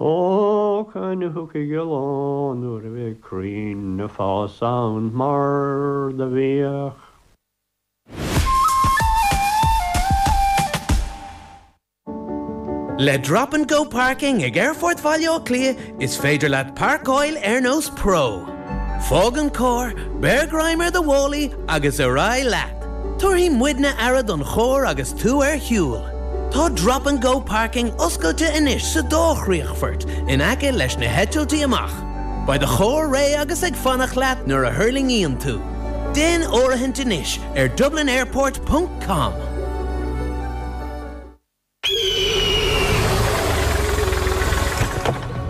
Ó, can thú chugainn an lá nuair a bheidh crainn ag fás ann mar do bhíodh. Le Drop and Go Parking ag Aerfort Bhaile Átha Cliath is féidir leat pairceáil ar nós pro. Fág an carr, beir greim ar do mhálaí agus ar aghaidh leat. Tabharfaidh muidne aire don charr agus tú ar shiúl. Tá Drop and Go Parking oscailte anois sa dá chríochfort in aice leis na heitiltí amach. Beidh do charr réidh agus ag fanacht leat nuair a thuirlingíonn tú. Déan áirithint anois ar dublinairport.com.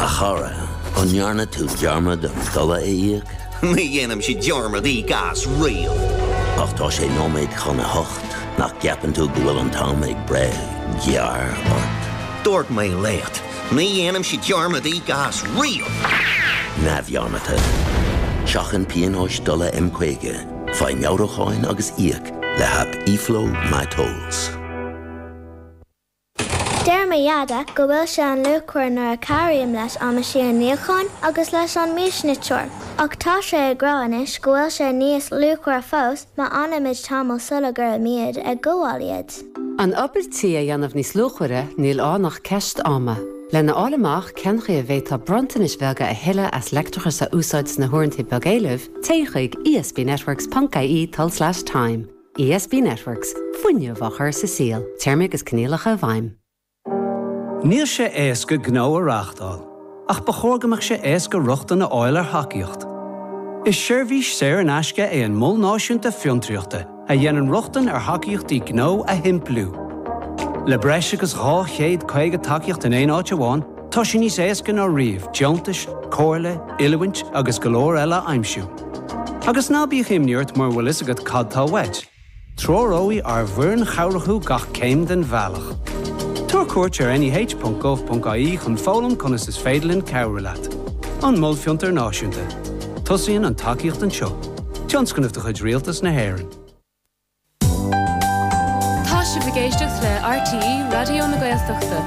A chara, an ndearna tú dearmad an dola a íoc? Ní dhéanaimse dearmad íoc as riamh. Ach tá sé nóiméad chun a hocht, nach gceapann tú go bhfuil an t-am ag breith gearr ort? Dúirt mé leat, ní dhéanaimse dearmad íoc as riamh! Neamhdhearmadta. Seachain pionóis dola M50, faigh meabhrúcháin agus íoc le haip eFlow MyTolls. Deir mo Dheaide go bhfuil sé an-luachmhar nuair a chabhraím leis an meaisín níocháin agus leis an miasniteoir, ach tá sé ag rá anois go bhfuil sé níos luachmhaire fós má fhanaimid tamall sula gcuirimíd ag gabháil iad. An obair tí a dhéanamh níos luachmhaire, níl ann ach ceist ama. Lena fháil amach cén chaoi a bhféadfá bronntanais bheaga a thuilleadh as leictreachas a úsáid sna huaireanta beag éilimh, téigh chuig ESBNetworks ponc IE tulslais time. ESB Networks, Fuinneamh á chur sa saol, Téarmaí agus coinníollacha i bhfeidhm. Níl sé éasca gnó a reáchtáil, ach ba chóir go mbeadh sé éasca rochtain a fháil ar thacaíocht. Is seirbhís saor in aisce é an Mol Náisiúnta Fiontraíochta a dhéanann rochtain ar thacaíochtaí gnó a shimpliú. Le breis agus 250 tacaíocht in aon áit amháin, Tá sé níos éasca ná riamh deontais, comhairle, oiliúint agus go leor eile a aimsiú. Agus ná bíodh imní ort mura bhfuil fhios agat cad tá uait, treoróidh ár bhfoireann chabhrach thú gach céim den bhealach. Tabhair cuairt ar neh.gov.ie chun foghlaim conas is féidir linn cabhrú leat. An Mol Fiontar Náisiúnta. Tosaíonn an tacaíocht anseo. Tionscnamh de chuid Rialtas na hÉireann. Tá sibh ag éisteacht le RTÉ Raidió na Gaeltachta.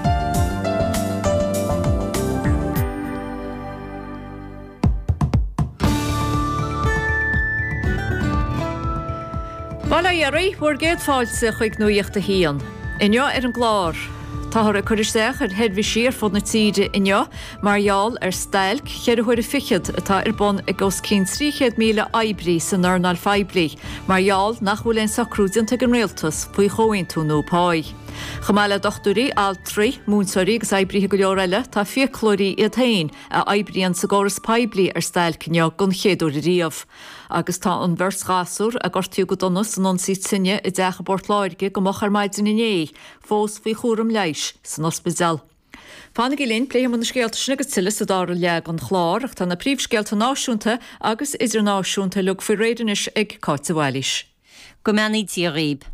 Bail ó Dhia oraibh, bhur gcéad fáilte chuig Nuacht a hAon. Inniu ar an gclár, Táthar ag cur isteach ar sheirbhísí ar fud na tíre inniu Mar gheall ar stailc cheithre huaire fichead atá ar bun ag os cionn 300,000 oibrí san earnáil phoiblí, mar gheall nach bhfuil aon socrú déanta ag an rialtas faoi chomhaontú nua páí. Chomh maith le dochtúirí, altraí, múinteoirí agus oibrithe go leor eile, tá fiaclóirí iad féin a oibríonn sa gcóras poiblí ar stailc inniu don chéad uair ariamh. Agus tá an bheirt ghasúr a gortaíodh go dona san ionsaí tine i dteach i bPort Láirge go moch ar maidin inné fós faoi chúram leighis san ospidéal. Fanaigí linn, pléifidh muid na scéalta sin agus tuilleadh sa dara leath den chlár, ach tá na príomhscéalta náisiúnta agus idirnáisiúnta uilig faoi réir anois ag Cáit de Bhailís. Go mbeannaí Dia dhaoibh.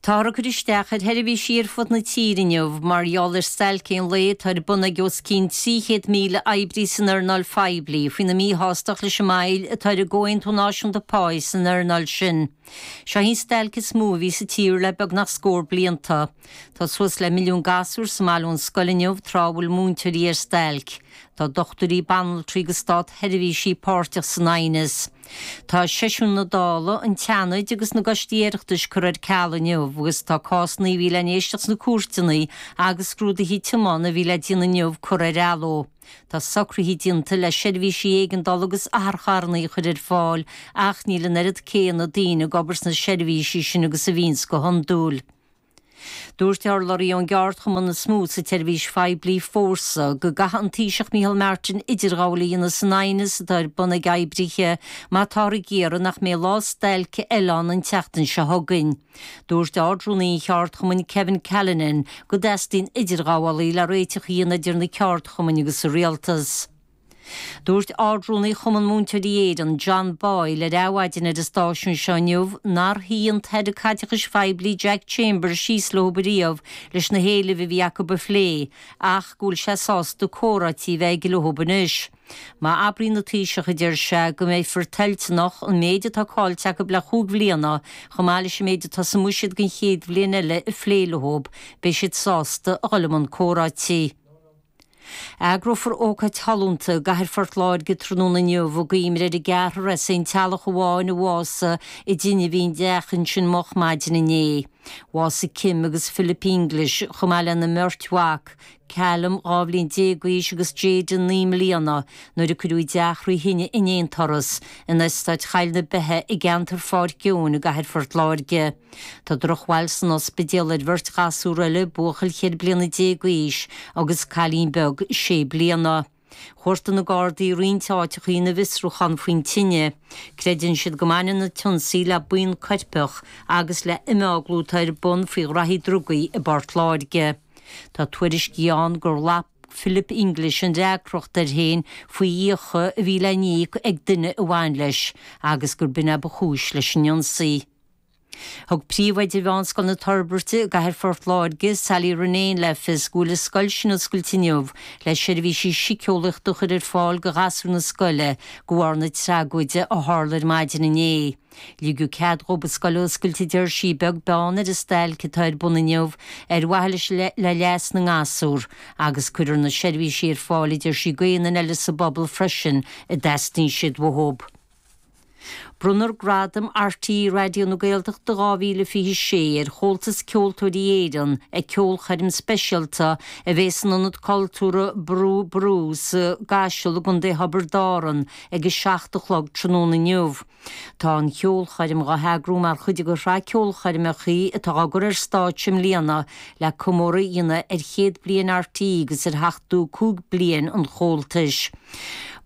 Táthar ag cur isteach ar sheirbhísí ar fud na tíre inniu mar gheall ar stailc aon lae atá ar bun ag os cionn 300,000 oibrí san earnáil phoiblí faoina míshástacht leis an moill atá ar an gcomhaontú náisiúnta páí san earnáil sin. Seo í an stailc is mó a bhí sa tír le beagnach scór blianta. Tá suas le milliún gasúr sa mbaile ón scoil inniu tráth a bhfuil múinteoirí ar stailc. Tá dochtúirí, banaltraí agus státseirbhísigh páirteach san aighneas. Tá seisiúin na Dála, an tSeanaid agus na gcoistí Oireachtais curtha ar ceal inniu agus tá cásanna a bhí le n-éisteacht sna cúirteanna agus scrúduithe tiomána a bhí le déanamh inniu curtha ar athló. Tá socruithe déanta le seirbhísí éigeandála agus otharcharranna a chur ar fáil ach níl an oiread céanna daoine ag obair sna seirbhísí sin agus a bhíonns go hiondúil. Dúirt urlabhraí ón gceardchumann is mó sa tseirbhís phoiblí, Fórsa, go gcaithfidh an Taoiseach Micheál Martin idirghabháil a dhéanamh san aighneas atá ar bun ag oibrithe má táthar ag iarraidh nach mbeidh lá stailc eile ann an tseachtain seo chugainn. Dúirt Ard-Rúnaí an cheardchumainn, Kevin Callinan, go dteastaíonn idirghabhálaí le réiteach a dhéanamh idir na ceardchumainn agus an Rialtas. Dúirt Ard-Rúnaí Chumann Múinteoirí Éireann, John Boyle, ar Adhmhaidin ar an stáisiún seo inniu nár shuigh an tAire Caiteachais Phoiblí Jack Chambers síos leo riamh leis na héilimh a bhí acu a phlé ach go bhfuil sé sásta comhráití a bheith aige leo anois. Má abraíonn an Taoiseach, a deir sé, go mbeifear toilteanach an méid atá caillte acu le chúig bhliana, chomh maith leis an méid atá sa mbuiséad don chéad bhliain eile, a phlé leo, beidh siad sásta a dhul i mbun comhráití. Eagrófar ócáid shollúnta i gCathair Phort Láirge tráthnóna inniu i gcuimhne ar an gceathrar as aon teaghlach amháin a bhásaigh i dtine a bhí ina dteach ansin moch maidin inné. Bhásaigh Kim agus Philip English, chomh maith lena mbeirt mhac, Callum, dhá bhliain déag d'aois agus Jayden, naoi mbliana, nuair a cuireadh a dteach thrí thine in aon turas, in Eastát Choill na Beithe i gceantar Pháirc Eoin i gCathair Phort Láirge. Tá drochbhail san ospidéal ar bheirt ghasúr eile, buachaill cheithre bliana déag d'aois agus cailín beag sé bliana. Chuartaigh na Gardaí roinnt áiteachaí ina bhfiosrúchán faoin tine. Creideann siad go mbaineann an t-ionsaí le buíon coirpeach agus le imeaglú atá ar bun faoi ghnaithí drugaí i bPort Láirge. Tá tuairiscí ann gur ghlac Philip English an fhreagracht air féin faoi fhiacha a bhí le n-íoc ag duine a bhain leis agus gur b'in ab chúis leis an ionsaí. Thug príomhoide Mheánscoil na Toirbirte i gcathair Phort Láirge, Sally Ronayne le fios go bhfuil a scoil sin oscailte inniu le seirbhísí siceolaíochta a chur ar fáil do ghasúir na scoile de bharr na tragóide a tharla ar maidin inné. Ligeadh cead dhób an scoil a oscailt a deir sí, beag beann ar an stailc atá ar bun inniu ar mhaithe le leas na ngasúr agus cuirfear na seirbhísí ar fáil a deir sí d'aon duine eile sa bpobal freisin a dteastaíonn siad uathób. Bronnfar Gradam RTÉ Raidió na Gaeltachta 2026 ar Chomhaltas Ceoltóirí Éireann ag ceolchoirm speisialta a bheidh san Ionad Cultúrtha Brú Ború sa gCaiseal i gContae Thiobraid Árann ag 7 a chlog tráthnóna inniu. Tá an cheolchoirm dá heagrú mar chuid de shraith ceolchoirmeacha atá á gcur ar stáitse i mbliana Le comóradh a dhéanamh ar chéad bliain RTÉ agus ar sheachtú cúig bliain an Chomhaltais,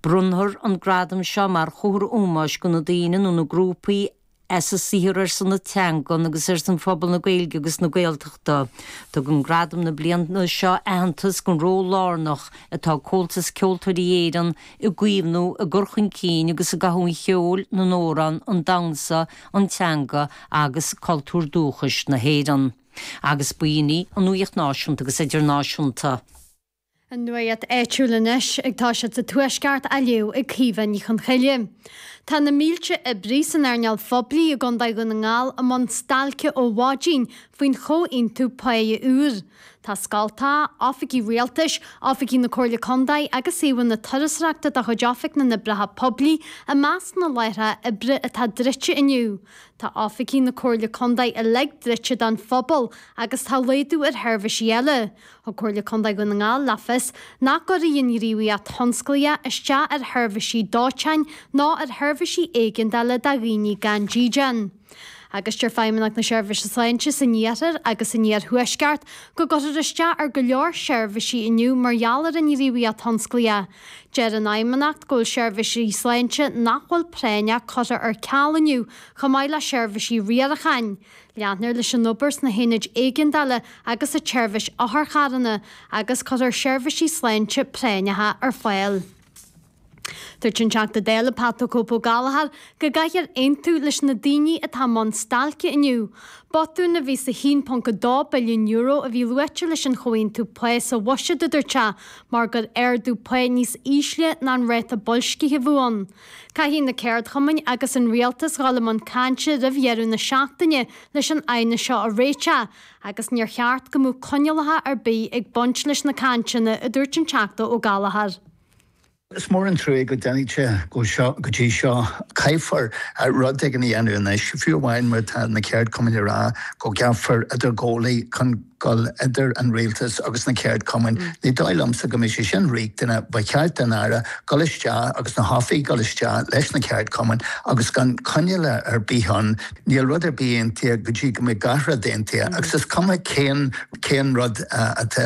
bronntar an gradam seo mar chomhartha ómóis do na daoine nó na grúpaí as a saothar ar son na teangan agus ar son phobal na Gaeilge agus na Gaeltachta. Tugann gradam na bliana seo aitheantas don ról lárnach atá ag Comhaltas Ceoltóirí Éireann i gcaomhnú, i gcur chun cinn agus i gcothú an cheoil, na n-amhrán, an damhnsa, an teanga agus cultúr dúchais na hÉireann. Agus b'in í an nuaíocht náisiúnta agus idirnáisiúnta. An nuaíocht áitiúil anois agus tá sí sa Tuaisceart á léamh ag Caoimhe Ní Chonchoille. Tá na mílte oibrí san earnáil phoiblí i gCondae Dhún na nGall i mbun stailce ó mhaidin faoin chomhaontú páighe úr. Tá scoltacha, oifigí rialtais, oifigí na Comhairle Condae agus suíomhanna turasóireachta de chuid Oifig na nOibreacha Poiblí i measc na láithreacha oibre atá druidte inniu. Tá oifigí na Comhairle Contae uilig druidte don phobal agus tá laghdú ar sheirbhísí eile. Thug Comhairle Contae Dhún na nGall le fios nach gcuirfidh an ghníomhaíocht thionsclaíoch isteach ar sheirbhísí dóiteáin ná ar sheirbhísí éigeandála do dhaoine gan dídean agus deir Feidhmeannacht na Seirbhíse Sláinte san Iarthar agus san Iarthuaisceart go gcuirfear isteach ar go leor seirbhísí inniu mar gheall ar an ngníomhaíocht thionsclaíoch. Deir an Fheidhmeannacht go bhfuil seirbhísí sláinte nach bhfuil práinneach curtha ar ceal inniu chomh maith le seirbhísí riaracháin. Leanfar leis an obair sna haonaid éigeandála agus sa tseirbhís otharcharranna agus cuirfear seirbhísí sláinte práinneacha ar fáil. Dúirt an Teachta Dála Pat 'The Cope' Gallagher Go gcaithfear aontú leis na daoine atá i mbun stailce inniu. Botún a bhí sa €1.2 billiún a bhí luaite leis an chomhaontú pá sa Bhuiséad, a dúirt sé, mar gur ardú pá níos ísle ná an ráta boilscithe a bhí ann. Caithfidh na ceardchumainn agus an rialtas dhul i mbun cainte roimh dheireadh na seachtaine leis an aighneas seo a réiteach agus níor cheart go mbeadh coinníollacha ar bith ag baint leis na cainteanna, a dúirt an Teachta Ó Gallchóir. Is mór an truaigh go dtáinig sé go dtí seo. Caithfear rud éigin a dhéanamh anois, fiú amháin mar atá na ceardchumainn ag rá go gceapfar idirghabhálaí chun dul idir an rialtas agus na ceardchumainn. Ní dóigh liomsa go mbeidh sé sin riachtanach. Ba cheart don Aire dul isteach agus na hoifigigh dul isteach leis na ceardchumainn agus gan coinníoll ar bith ann, níl rud ar bith aontaithe go dtí go mbeidh gach rud aontaithe agus is cuma cén rud atá